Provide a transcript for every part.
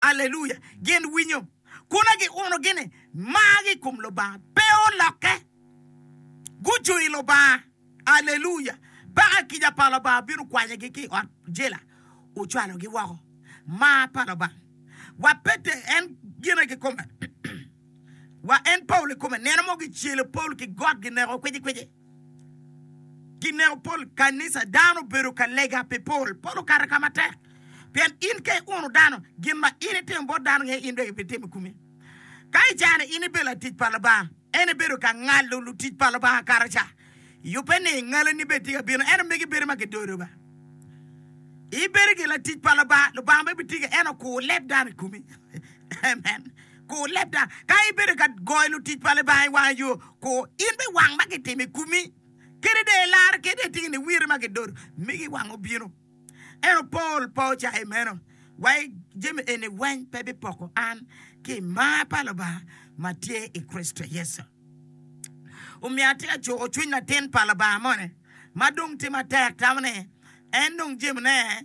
Alleluia! Gin winyo, kuna giuno gini margi i kom Lubanga, pe olokke. Gucung i Lubanga. Alleluia! Paka kica pa Lubanga bino kwanyagi ki i ot jela, ocwalogi woko. Mar pa Lubanga! Wa Pete, en gine kikome, wa en Paulo ikome, neno mo gicelo Paulo ki got gineko kwicikwici. Kineko pol kanica dano obedo ka lega pi pol. Pol okato ka matek pien in ka iuno dano, gin ma in itimo bot dano nge in bene ibitimo i kumi. Ka i caa-ni in ibedo latic pa Lubanga, en ebedo ka ngalo lutic pa Lubanga kato ca. Yubbe ni ngaloni bene tye ka bino, ento megi bedo ma gidodo ba. Ibedo gire latic pa Lubanga, Lubanga bene bitiki, en okur leb dano i kumi. Amen. Kur lebda. Ka ibedo ka goyo lutic pa Lubanga i wanga yo, kur in bene wang ma gitimo i komi. Kadi dong ilarre kadi dong itye ki niwiro ma gidodo, migi wang obino. Ento Paul pe ocayo meno. Wa i jami eni weng pe bipoko an ki i mar pa Lubanga ma tye i Kricito Yecu. Omiyo atye ka cuko cwiny latin pa Lubanga moni ma dong tye matek tamo ni en nong jemine.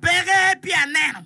Peke pi aneno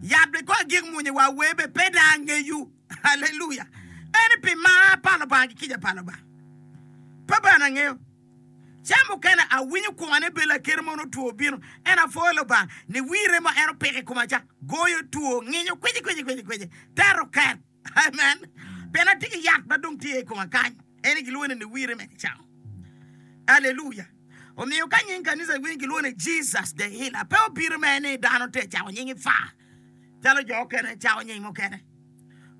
yat bene kong agik mwonya i war wer bene pe dong angeyo. Haleluya! Ento pi mar pa Lubanga ki kica pa Lubanga pe bene angeyo. Ca mukene awinyo kwonga ni bed lakeri mono two obino, ento apwoyo Lubanga ni wir remo ma en opiko i koma ca goyo two, nginyo, kwici kwici kwici kwici, teto ket. Amen. Pien atye ki yat ma dong tye i koma kany, ene gilwongo ni niwire me kicamo. Aleluya! Omiyo ka nying kanisa winy gilwongo ni Jesus the Healer, pe obino mere ni dano te cako nyingi fa calo jo okene cako nying mukene.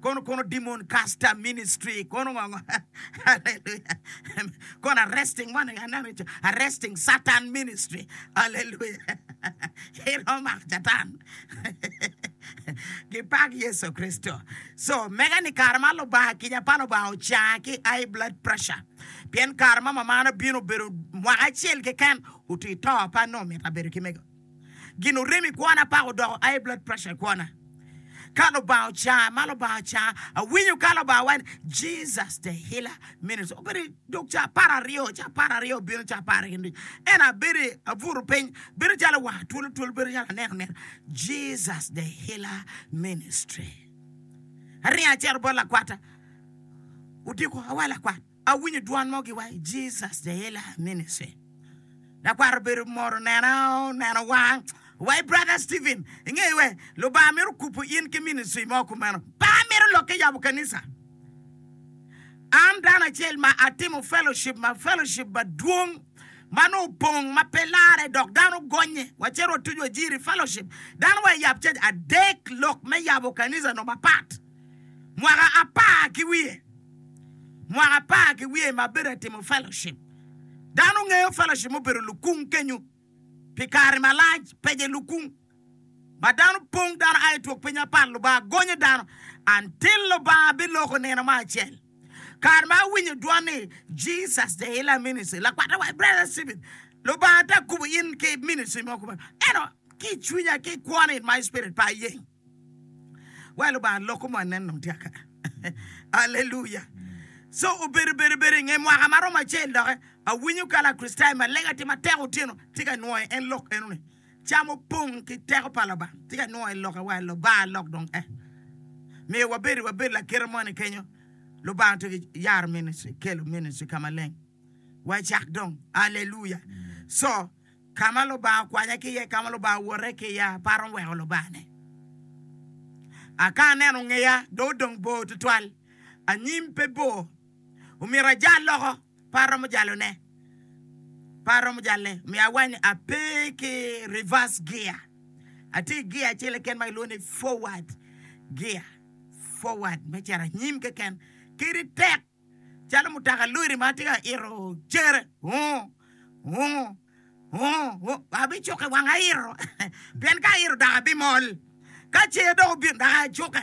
Kono kono demon caster ministry kono ngongo. Aleluya! Kono arresting one and another each arresting Satan ministry. Aleluya! Iromo mako Catan Gipak Yecu Kricito! Co, mega ni kare ma Lubanga kica pa Lubanga ocanga ki high blood pressure pien kare ma mamana obino obedo mwaka acel keken otwi to pe anongo mito abedo ki mego gin orem i kwona paka odoko high blood pressure i kwona ka Lubanga ocanga ma Lubanga ocanga awinyo ka Lubanga waco ni Jesus the healer Minutes obedo dog ca apar aryo, ca apar aryo obino ca apar ki nuc. En abedo abuto piny, bedo calo wanga twolo twolo, bedo calo aneno neno Jesus the Healer Ministry. Aringo acito bot lakwata, odiko awa lakwat, awinyo dwan mo giwaci Jesus the Healer Ministry. Lakwat obedo mot onena oneno wa wai brother Steven ingeyo we lubanga mito kubu in ki ministry mo kumeno banga mito lokke yabo kanisa an dano acel ma atimo fellowship ma fellowship madwong ma nongo opong ma pe lare dok dano gonye wa cito wa tuju ajiri fellowship dano wa yab cac adek lok me yabo kanisa nongo mapat mwaka apar ki wiye, mwaka apar ki wiye ma abedo ka timo fellowship, dano ngeyo fellowship mubedo lukung kenyu pi kare malac, pece lukung ma dano pong, dano a i twok piny mapat, Lubanga gonyo dano until Lubanga biloko nino mo acel. Kare ma awinyo dwon ni Jesus the Healer Ministry, lakwatte wa Brother Stephen, Lubanga te akubo in ki ministry mo kumeno, ento ki i cwinya, ki i kwona in my spirit pe ayeng. Wai lubanga loko mo anen dong tyaka aleluya co obedo bedo bedo inge mwaka ma romo acel doke awinyo ka lacristayo ma lega tye matek otyeno tye ka nwoyo en lok eno ni cam opong ki teko pa lubanga tye ka nwoyo en loke wai lubanga lok dong eh miyo wabedo wabedo lakite mo ni kenyo lubanga to yaro ministry kelo ministry ka maleng wai cak dong aleluya co Ka ma Lubanga okwanya ki iye, ka ma Lubanga owote ki iya, aparo ni weko Lubanga-ne. A Ka aneno ngeya dong odong bor tutwal, anyim pe bor, omyero ajal loko, pe aromo jalone, pe aromo jalle. Omyero awany ni ape ki reverse gear, atye ki gear acel keken ma kilwongo ni forward gear, forward me cito anyim keken. Kadi tek calo mutoka lori ma tye ka ito cere, abicukke wang aito pien ka aito dok abimol, ka cer dok obino dok acukke.